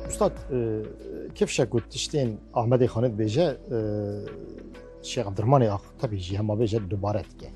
Ustad kevşek got tiştên Ahmedê Xanê dibêje Şêx Abdirmanê ax tebî jî hema bêje dubare dike.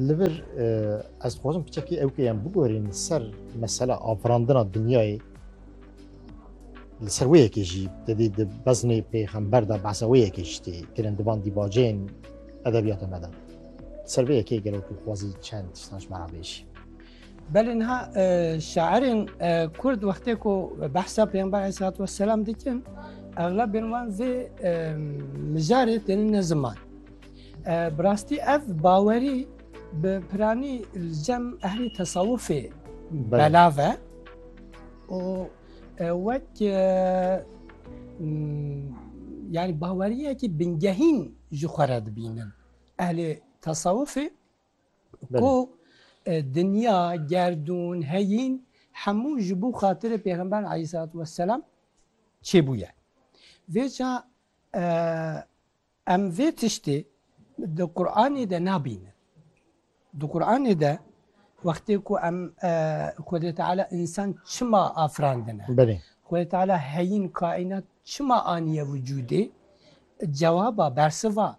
Li vir ez dixwazim piçekî ew kê em bigorîn ser mesela afirandina dinyayê li ser wê yekê jî dedî di beznê pêxember de behsa wê yekê jî tê kirin divan dîbaceyên edebiyata me de. Ser vê yekê gelo tu dixwazî çend tiştan ji me re bêjî. Belê niha şairên Kurd wextê ku behsa Pêxember Aleyhisselatü Vesselam dikin, eglabên wan vê mijarê têne ne ziman. Bi rastî ev bawerî bi piranî li cem ehlî tesawufê belav e û wek yani baweriyekî bingehîn ji xwe re dibînin. Ehlê tesawufê Ku dinya, gerdûn, heyîn hemû ji bo xatirê Pêxember Eîsalatu Weselam çêbûye. Vê ca em vê tiştê di Quranê de nabînin. Di Quranê de wextê ku em Xwedê Teala însan çima afirandine? Belê. Xwedê Teala heyîn kaînat çima aniye wicûdê? Cewaba, bersiva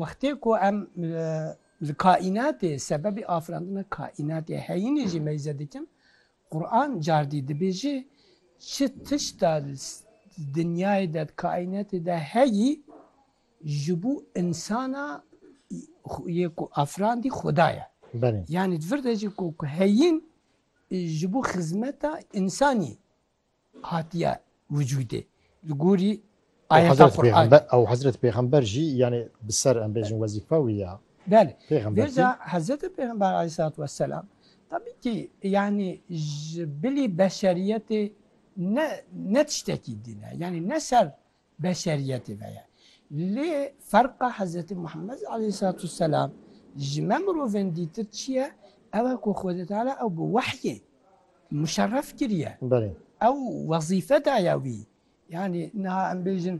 Wextê ku em li kaînatê sebebê afirandina kaînatê heyînê jî meyze dikin, Quran cardî dibêje çi tişta li dinyayê de di kaînatê de heyî ji bo insana yê ku afirandî xuda ye. Yanî di vir de jî ku heyîn ji bo xizmeta insanî Hatiye vücudê li gorî ayeta Qur'anê. Ew hezret pêxember jî yanî bi ser em bêjin wezîfa wî ya. Belê. Vêca hezretê pêxember aleyhîsselatu wesselam tebî kî yanî ji bilî beşeriyetê ne ne tiştekî dîn e. Yanî ne ser Beşeriyetê ve ye. Lê ferqa Hezretî Muhemmed aleyhîsselatûsselam ji me mirovên dîtir çi ye? Ew e ku Xwedê Teala ew bi wehyê muşerref kiriye. Ew wezîfe daye wî. Yanî niha em bêjin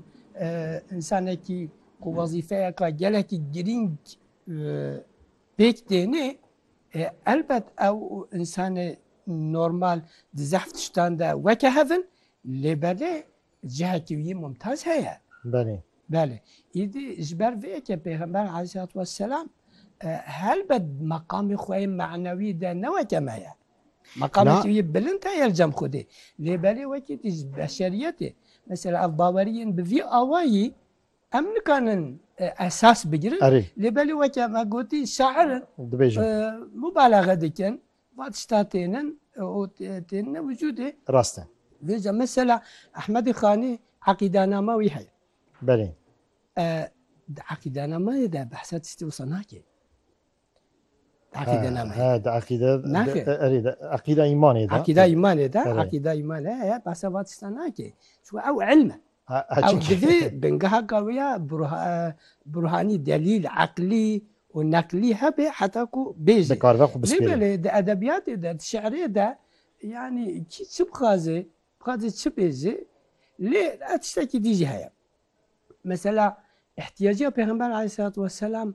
însanekî ku wezîfeyeke gelekî girîng pêk têne, elbet ew însanê normal di zehf tiştan de weke hev in, lê belê Cihekî wî Mumtaz heye. Belê. Belê. Îdî ji ber vê yekê Pêxember Aleyhîsselatu Wesselam helbet meqamê xwe yê manewî de ne weke me ye. Meqamekî wî bilind heye li cem Xwedê. Lê belê wekî dî ji beşeriyetê. Mesela ev bawerî yên bi vî awayî em nikanin esas bigirin. Lê belê weke me gotî şair in, mubalaxe dikin, Va tişta tênin û tênine wicûdê. Rast e. Vêca mesela Ehmedê Xanî eqîdanama wî heye. Belê. Di eqîdanamayê de behsa tiştê wisa nake. Di eqîdenamayê. He, he, di eqîde. Naxir. Erê, di eqîda îmanê de. Eqîda îmanê de, eqîda îmanê heye, behsa va tişta nake. Çi ew ilm e. Ew divê bingeheka wê ya burhanî, delîl, eqlî û neqlî hebe heta ku bêjî. Dikaribe xwe bispêre. Lê belê di edebiyatê de, di şiirê de yanî kî çi bixwaze, bixwaze çi bêje lê ev tiştekî dî jî heye. Mesela îhtîyaciya Pêxember Aleyhîsselatu Wesselam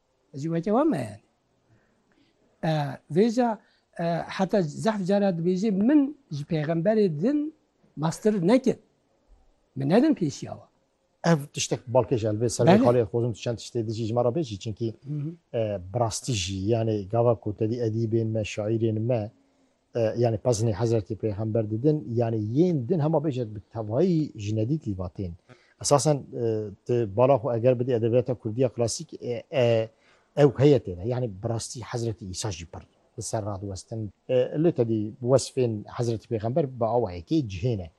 Ez jî weke wan me yani. E, vêca e, heta zehf cara dibêjê min ji pêxemberê din master nekir. Min nedin pêşiya wan. Ev tiştek balkê ji elbê ser vê xalê xozim tu çend tiştê dijî ji me re bêjî çinkî e, bi rastî jî yanê gava ku tedî edîbên me, şaîrên me yani pezinê Hezretî Pêxember didin yani yên din hema bêje bi tevayî ji nedî tîvatên. Esasen ti bala xwe eger bidî edebiyata Kurdî ya klasîk ew heye têne. Yani bi rastî Hezretî Îsa jî pir li ser radiwestin. Lê tedî wesfên Hezretî Pêxember bi awa yekê cihê ne.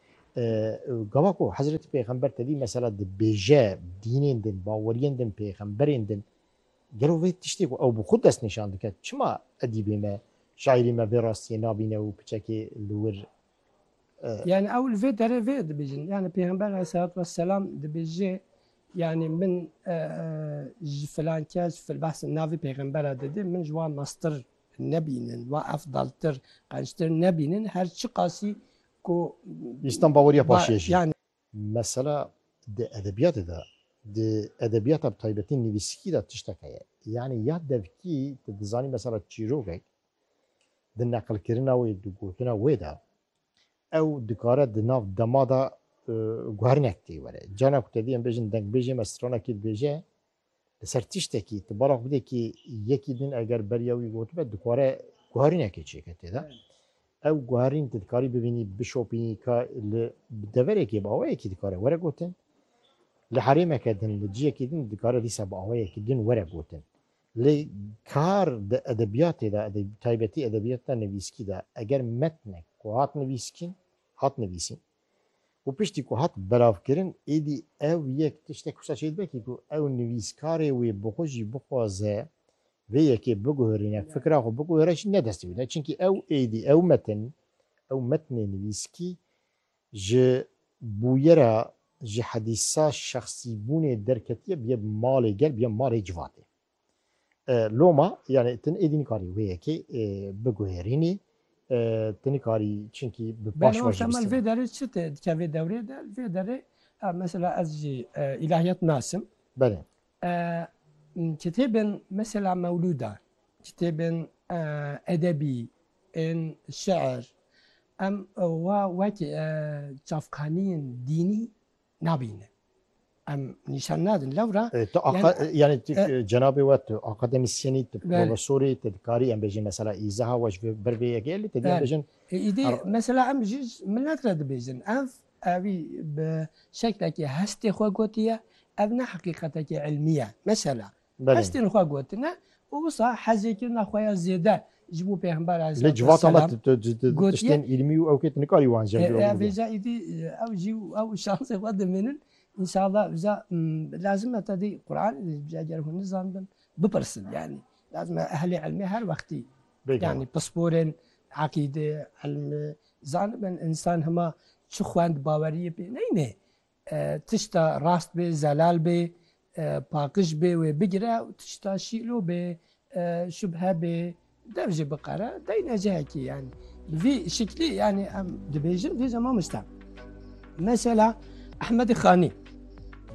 Gava ku Hezretî Pêxember tedî mesela dibêje dînên din, baweriyên din, pêxemberên din, Gelo vê tiştê ku ew bi xwe destnîşan dike çima edîbê me, şaîrê me vê rastiyê nabîne û piçekê li wir e? Yanî ew li vê derê vê dibêjin. Yanî Pêxember aleyhisselatu vesselam dibêje yanî min ji filan kes behsa navê pêxembera dide min ji wan meztir nebînin, wan efdaltir, qenctir nebînin her çiqasî ku Îslam baweriya paşiye jî. Mesela di edebiyatê de, di edebiyata bi taybetî nivîskî de tişteke ye. Yanî ya devkî tu dizanî mesela çîrokek di neqilkirina wê, di gotina wê de ew dikare di nav dema de guherinek tê were. Cana ku te dî em bêjin dengbêjê me stranekî dibêje, Li ser tiştekî tu bala xwe bidê kî yekî din eger beriya wî gotibe dikare guharînekê çêke tê de. Ew guharîn tu dikarî bibînî, bişopînî ka li bi deverekê bi awayekî dikare were gotin. Li herêmeke din, li ciyekî din dikare dîsa bi awayekî din were gotin. Lê kar di edebiyatê de, taybetî edebiyata nivîskî de eger metnek ku hat nivîskîn, hat nivîsîn, Û piştî ku hat belavkirin, êdî ew yek tiştek wisa çê dibe kî ku ew nivîskarê wê bi xwe jî bixwaze vê yekê biguherîne, fikra xwe biguhere jî ne destê wî ne. Çimkî ew êdî, ew metin, ew metnê nivîskî ji bûyera, ji hedîsa şexsîbûnê derketiye biye bi malê gel, biye malê civatê. Loma yani tin êdî nikarî wê yekê biguhêrînî tu nikarî çinkî bi paş Beno temel vê derê çi tê dike vê dewrê de vê derê mesela ez jî îlahiyat nasim. Belê. Kitêbên mesela mewlûda, kitêbên edebî ên şeir em wa wekî çavkaniyên dînî Nabînin. Em nîşan nadin lewra. E, tu aqa, yani, yani tu, e, e, cenabê we tu akademisyenî tu profesorî tu dikarî em bêjin mesela îzeha we ji ber vê yekê li te dî em bêjin. E, îdî mesela em ji milet re dibêjin ev evî bi şeklekî hestê xwe gotiye ev ne heqîqetekî ilmî ye. Mesela Hestên xwe gotine û wisa hezêkirina xwe ya zêde ji bo Pêxember aleyhisselam gotiye. Vêca îdî ew jî û ew şansê xwe dimînin. Înşallah vêca lazim e tedî Quranê de jî eger hûn nizanibin bipirsin yanî. Lazim e ehlê ilmê her wextî yanî pisporên eqîdê, ilmê zanibin. Însan hema çi xwend baweriyê pê neyne. Tişta rast bê, zelal bê, paqiş bê wê bigire û tişta şîlo bê, şubhe bê dev jî biqere deyne cihekî yanî. Bi vî şiklî yanî em dibêjin dîje mamoste. Mesela Ehmedî Xanî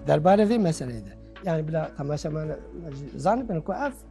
derbarê vê meseleyê de yanî bila temaşeman zanibin ku ev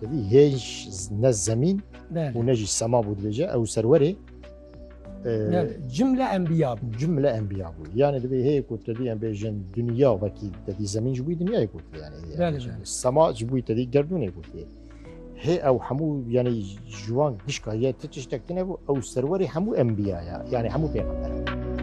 Tevî hêj ne zemîn û ne jî sema bû dibêje ew serwerê cimle enbiya bû cimle enbiya bû yanê dibê heye ku tevî em bêjin duniya vekî tevî zemîn ji bûî dinyayê ku sema ji bûî tevî gerdûnê ku hê ew hemû yanî ji wan dişka ye ti tiştek tine bû ew serwerê hemû enbiya ye yanî hemû pêxember.